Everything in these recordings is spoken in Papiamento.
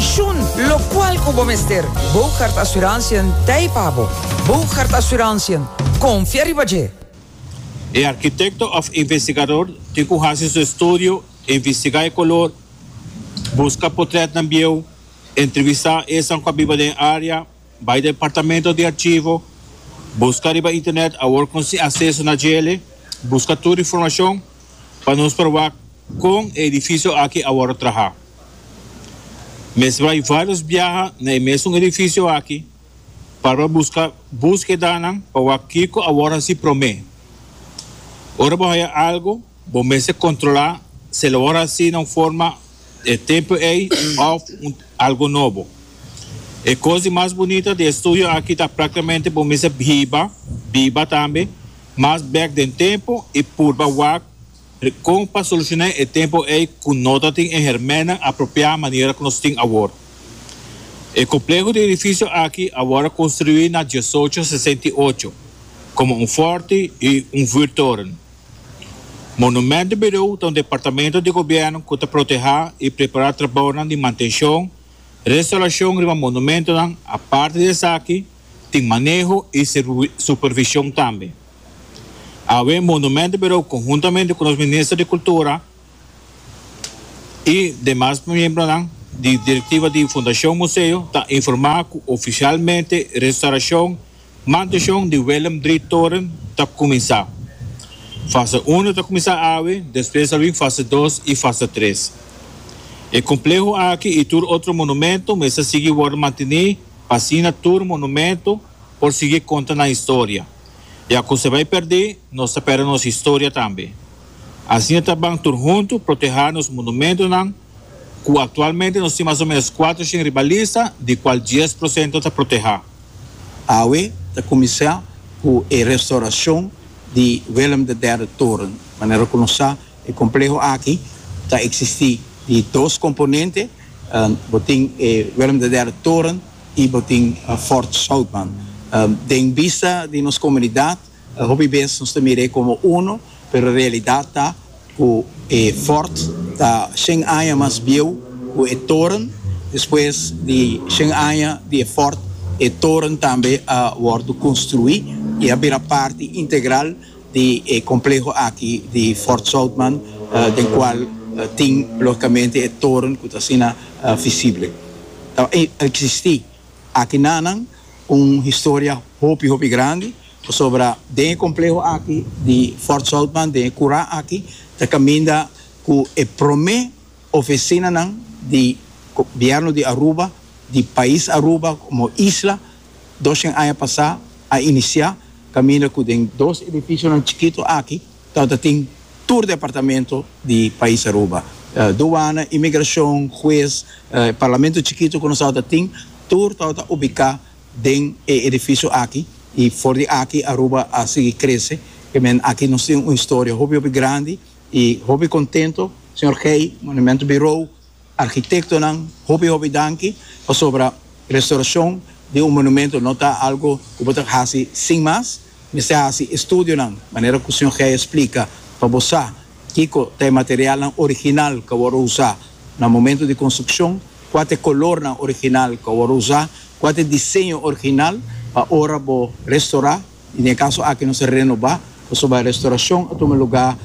Shun locual cu bo mester. Boogaard Assurantiën t'ei pa bo. Boogaard Assurantiën, confia riba dje! E arquitecto of investigador tin cu haci su estudio, investiga e color, busca potretnan bieuw, entrevista esan cu a biba den e area, bai departamento di archivo, busca riba internet awor con sin acceso na djele, busca tur informacion pa nos proba con e edificio aki awor a traha. Mester bai vários biaha na e mesun edifisio aki para buska búskedanan pa wak kiko a wòrdu hasi promé. Ora bo haya algu, bo mester kontrolá si el a wòrdu hasi na un forma e tempu ei òf un algu nobo. E kos di mas bunita di e studio aki ta práktikamente bo mester hiba, biba tambe, mas bèk den tempu i purba wak Di kon pa solushoná e tempu ei ku no ta tin e hèrmènan apropiá manera ku nos tin awor. E kompleho di edifisio aki a wòrdu konstruí na diesocho sesenta i ocho komo un fòrti i un vuurtoren. Monumentenbirou ta un departamento di gobièrnu ku ta protehá i prepará trabaonan di mantenshon, restaurashon riba monumentonan, aparte di esaki tin maneho i supervishon tambe. Awe Monumento Bureau conhuntamente cu nos Minister di Cultura y demas miembronan di directiva di Fundacion Museo ta informa cu oficialmente restauracion mantencion di Willem Drie Toren ta cuminsa. Fase uno ta cuminsa awe, despues ta bin fase dos y fase tres. E compleho aki y tur otro monumento mester sigui worde manteni pa asina tur monumento, por sigui konta nan historia. Ya ku se bai perdí, nos ta perde nos historia tambe. Asina ta ban tur huntu protehá nos monumentonan, ku aktualmente nos tin mas o ménos kuater shen riba lista, di kual dies prosento ta protehá. Awe ta kuminsá ku e restorashon di Willem de Derde Toren. Manera ku nos sa, e kompleho aki ta eksistí di dos komponente. Bo tin e Willem de Derde Toren. y bo tin Fort Southman den bista di nos comunidad hopi bes nos ta mir'e como uno pero realidad ta cu e Fort ta shen aña mas bieu cu e toren despues di shen aña di e Fort e toren tambe a wordo construi y a bira parti integral di e compleho aki di Fort Southman den cual tin logicamente e toren cu ta asina visible. Ta existi aki nanan un historia hopi hopi grandi pasobra den e compleho aki di Fort Southman den e cura aki ta caminda cu e prome oficinanan di gobierno di Aruba, di pais Aruba como isla. doshen aña pasá a inisiá kaminda ku den dos edifisionan chikitu aki tabata tin tur departamento di pais Aruba, duana, imigrashon, hues, e parlamento chikitu ku nos tabata tin tur tabata ubiká den e edifisio aki i for di aki Aruba a sigui krese e men aki nos tin un historia hopi hopi grandi i hopi kontento señor Gey, Monumentu Birou, Arkitektonan hopi hopi danki pasobra restaurashon di un monumentu no ta algu ku bo ta ka hasi sin mas. Mester hasi estudionan, manera ku señor Geijer splika, pa bo sa kiko ta e materialnan original ku a wòrdu usá na momentu di konstrukshon, kua ta e kolornan original ku a wòrdu usá, kua ta e diseño original pa ora bo restorá. I den e kaso aki nos a renobá pasobra restaurashon a tuma lugá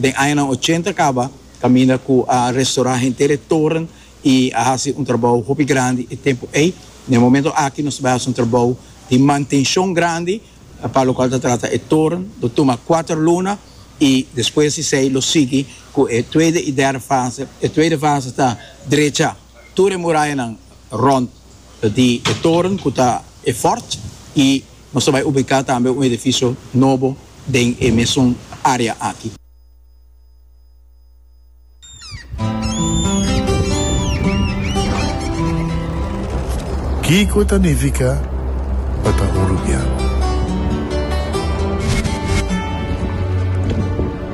den añanan ochenta kaba, kaminda ku a restaurá henter e toren i a hasi un trabou hopi grandi e tempu ei. Na e momentu aki nos bai hasi un trabou di mantenshon grandi pa lokual ta trata e toren, lo tuma kuater luna i despues di esei lo sigui ku e tueide i derde fase. E tueide fase ta drechá. Tur e murayanan rònt di e toren ku ta e fòrt i nos ta bai ubiká tambe un edifisio nobo den e mesun área aki. Kiko ta nifiká pa ta hurupiá?